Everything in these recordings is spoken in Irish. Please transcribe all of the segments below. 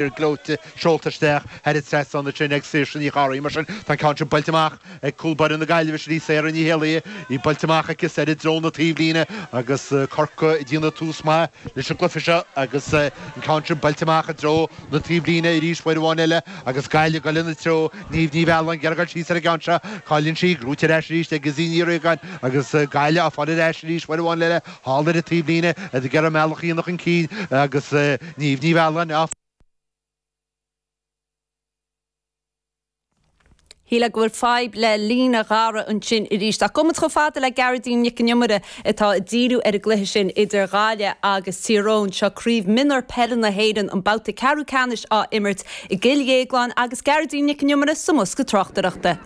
fir gleoite seolta isteach thar an trasnán ansin ag Saoirse Ní Chárthaigh. Mar sin, tá an ceann sin buailte amach ag cúl baire na Gaillimhe sin í Sarah Ní hÉalaithe. Í buailte amach aici soir i dtreo na taobhlíne agus Corcaigh ag déanamh tús maith leis an gcluiche seo agus an ceann sin buailte amach i dtreo na taobhlíne arís uair amháin eile agus Gaillimh ag dul ina treo. Niamh Ní Mhealláin ag iarraidh gabháil síos ar an gceann sin. Cailleann sí, gnóite ar ais arís ag Izzy Ní Riagáin agus Gaillimh á fáil ar ais arís uair amháin eile. Thall ar an taobhlíne, iad ag iarraidh a mbealach a dhéanamh chun cinn, agus Niamh Ní Mhealláin á. Shílfeá go bhfuil fadhb le líne Dhara ansin arís, ach imeoidh muid chomh fada le Gearoidín Nic an Iomaire atá ag díriú ar an gcluiche sin idir Ghaillimh agus Tír Eoghain. Seo Craobh Mionúr Peile na hÉireann, an babhta ceathrú ceannais á imirt i gCill Dhéagláin agus Gearoidín Nic an Iomaire sa mbosca tráchtaireachta.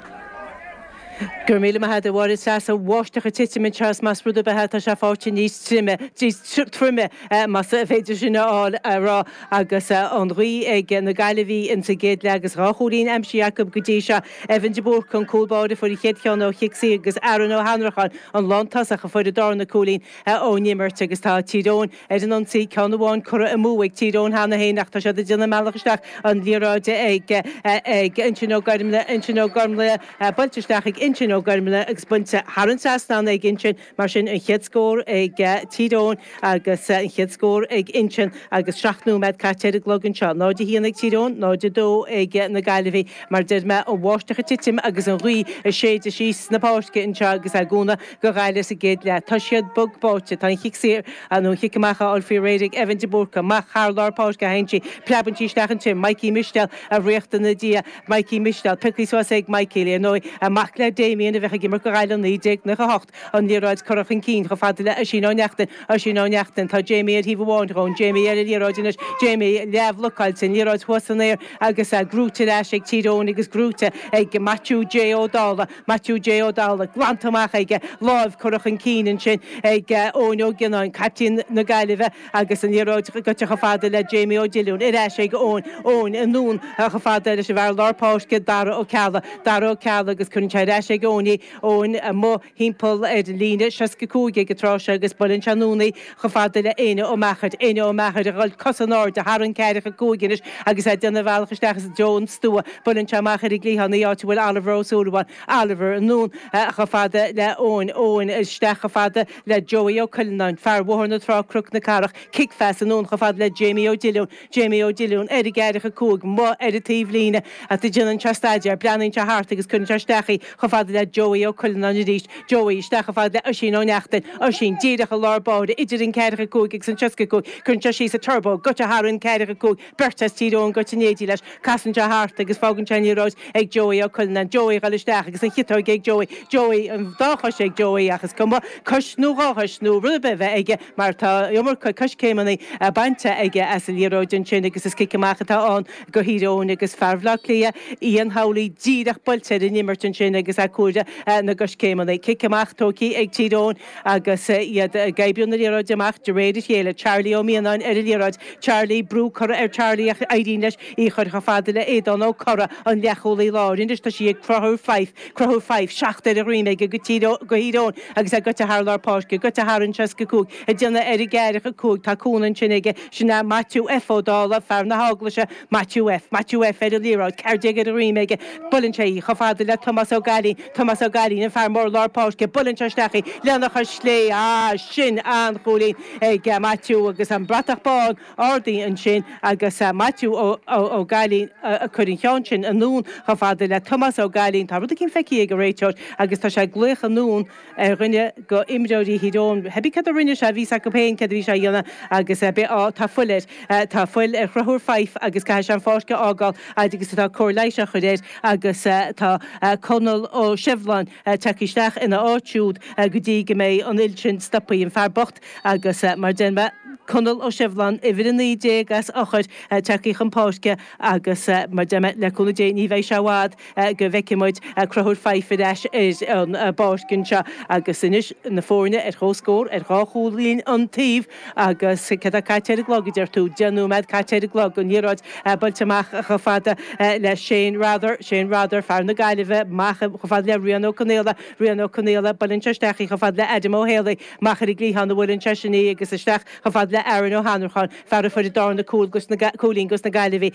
Go raibh míle maith a'd a Mháire, is fós an bháisteach ag titim anseo is más rud ar bith é tá sé faighte níos troime, níos troime más féidir sin a fháil, a rá agus an ghaoth ag na Gaillimhigh insa gcéad leath agus dhá chúilín aimsithe acu go dtí seo. Evan de Búrca an cúl báire a fuair an chéad cheann ó chic saor agus Aaron Ó hAnnracháin an lántosach a fuair an darna cúilín ón imirt agus tá Tír Eoghain Ar an ionsaí, ceann amháin curtha amú ag Tír Eoghain cheana féin ach tá siad ag déanamh a mbealach isteach an liathróid ag Uinsionn Ó Guirmle, Uinsionn Ó Guirmle, buailte isteach ag Uinsionn Ó Guirmle agus bainte thar an trasnán ag Uinsionn. Mar sin an chéad scór ag Tír Eoghain agus an chéad scór ag Uinsionn agus seacht nóiméad caite ar an gclog anseo. 0-1 ag Tír Eoghain, 0-2 ag na Gaillimhigh. Mar a deir mé, an bháisteach ag titim agus an ghaoth ag séideadh síos na páirce anseo agus é ag cúnamh. do Ghaillimh sa gcéad leath. Tá siad bog báite. Tá an chic saor nó an chic amach á fháil faoi réir ag Evan de Búrca amach thar lár páirce a théann sí, preabann sí sleamhnaíonn sí, Mikey Mistéal a thíocht ina diaidh, Mikey Mistéal, pioctha suas ag Mikey, ar ndóigh, an mac le Damien a bhí ag imirt do Ghaillimh i 1998, an liathróid curtha chun cinn chomh fada le Oisín Ó Neachtain, Oisín Ó Neachtain, tá Jamie ar thaobh amháin dhó, Jamie ar an liathróid anois, Jamie, leathbhlocáilte, an liathróid thuas san aer agus gnóite ar ais ag Tír Eoghain agus gnóite ag Maitiú J. Ó Dálaigh. Maitiú J. Ó Dálaigh glanta amach aige, lámh curtha chun cinn ansin ag Eoin Ó Gionnáin, caiptín na Gaillimhe agus an liathróid goite chomh fada le Jamie Ó Diolúin, ar ais ag Eoin, Eoin anonn chomh fada leis an bhfear lár páirce Dara Ó Ceallaigh, Dara Ó Ceallaigh agus cuireann sé ar ais ag Eoin í, Eoin amuigh thimpeall ar líne 65 ag an tráth seo agus buaileann sé anonn í, Chomh fada le Éinne Ó Meachair, Éinne Ó Meachair, a dhul cosa in airde, thar an 45 anois agus é ag déanamh a bhealach isteach i dtreo an stua, buaileann sé amach ar an gcliathán í, áit a bhfuil Oliver Ó Súilleabháin, Oliver, anonn chomh fada le Eoin, Eoin, isteach chomh fada le Joey Ó Cuilleanáin, fear Bhóthar na Trá, Cnoc na Cathrach, Cic-Phas, anonn chomh fada le Jamie Ó Diolúin, Jamie Ó Dilliún, ar an gceathracha 5, amuigh ar an taobhlíne atá, déanann sé staidéar, breathnaíonn sé thart agus cuireann sé isteach í chomh fada le Joey Ó Cuilleanáin arís, Joey, isteach chomh fada le Oisín Ó Neachtain, Oisín, díreach i lár báire idir an ceathracha cúig agus an seasca cúig, cuireann sé síos an turbo, goite thar an ceathracha cúig, beirt as Tír Eoghain goite in éindí leis, casann sé thart agus fágann sé an liathróid ag Joey Ó Cuilleanáin, Joey, ag goil isteach agus an chiotóg ag Joey, Joey, an dá chois ag Joey ach is cuma cos nó dhá chois nó rud ar bith a bheith aige, mar tá iomarca coiscéimeanna bainte aige as an liathróid ansin agus is cic amach atá ann go Thír Eoghain agus fear Bhleá Cliath, Ian Howley, díreach buailte ar an imirt ansin agus é ag comhaireamh na gcoiscéimeanna. Cic amach tógtha ag Tír Eoghain agus iad ag oibriú na liathróide amach de réir a chéile. Charlie Ó Mianáin ar an liathróid. Charlie, brú curtha ar Charlie ach éiríonn leis í chur chomh fada le Aodán Ó Corra, an leathchúlaí láir. Anois tá sí ag Cruthúr Fife. Cruthúr Fife 7 ar a dhroim aige go Tír, go Thír Eoghain agus é goite thar lár páirce, goite thar an 65 ag déanamh ar an gceathracha 5 tá cúnamh ansin aige, sin é Maitiú F Ó Dála, fear na hEaglaise, Maitiú F, Maitiú F ar an liathróid, ceathair déag ar a dhroim aige, buaileann sé í chomh fada le Tomás Ó Gaillín, Tomás Ó Gaillín, an fear mór lár páirce, buaileann sé isteach í lena chois chlé, ah sin an-chúilín ag Maitiú agus an bhratach bán, Ardaithe ansin agus Maitiú Ó Gailín a chuir an ceann sin anonn chomh fada le Tomás Ó Gailín. Tá rud éigin feicthe ag an réiteoir agus tá sé ag glaoch anonn ar dhuine go imreoirí Thír Eoghain, cibé céard a rinne sé, níl a fhios agam féin céard a bhí sé a dhéanamh agus ar bith, á tá fuil air, tá fuil ar Chruthúr Fife agus caithfidh sé an pháirc a fhágáil fhad agus atá cóir leighis á chur air agus tá Conall Ó Sibhleáin tagtha isteach ina áit siúd go dtí go mbeidh an fhuil sin stoptha. An fear bocht Agus mar deir mé, Conall Ó Sibhleáin, uimhir 19 as Eochair, tagtha chun páirce agus mar deir mé, le cúnamh Dé ní bheidh sé i bhfad go bhfeicfidh muid Cruthúr Fife ar ais ar an bpáirc anseo. Agus anois na foirne ar chomhscór, ar dhá chúilín an taobh agus céard atá caite ar an gclog a deir tú? Deich nóimeád caite ar an gclog. An liathróid buailte amach chomh fada le Shane Rother, Shane Rother, fear na Gaillimhe, amach chomh fada le Rian Ó Conaola, Rian Ó Conaola, buaileann sé isteach í chomh fada le Adam Ó hÉalaí, Amach ar an gcliathán a bhuaileann seisean í agus isteach chomh fada le Aaron Ó hAnnracháin, fear a fuair an darna cúilín dos na Gaillimhigh.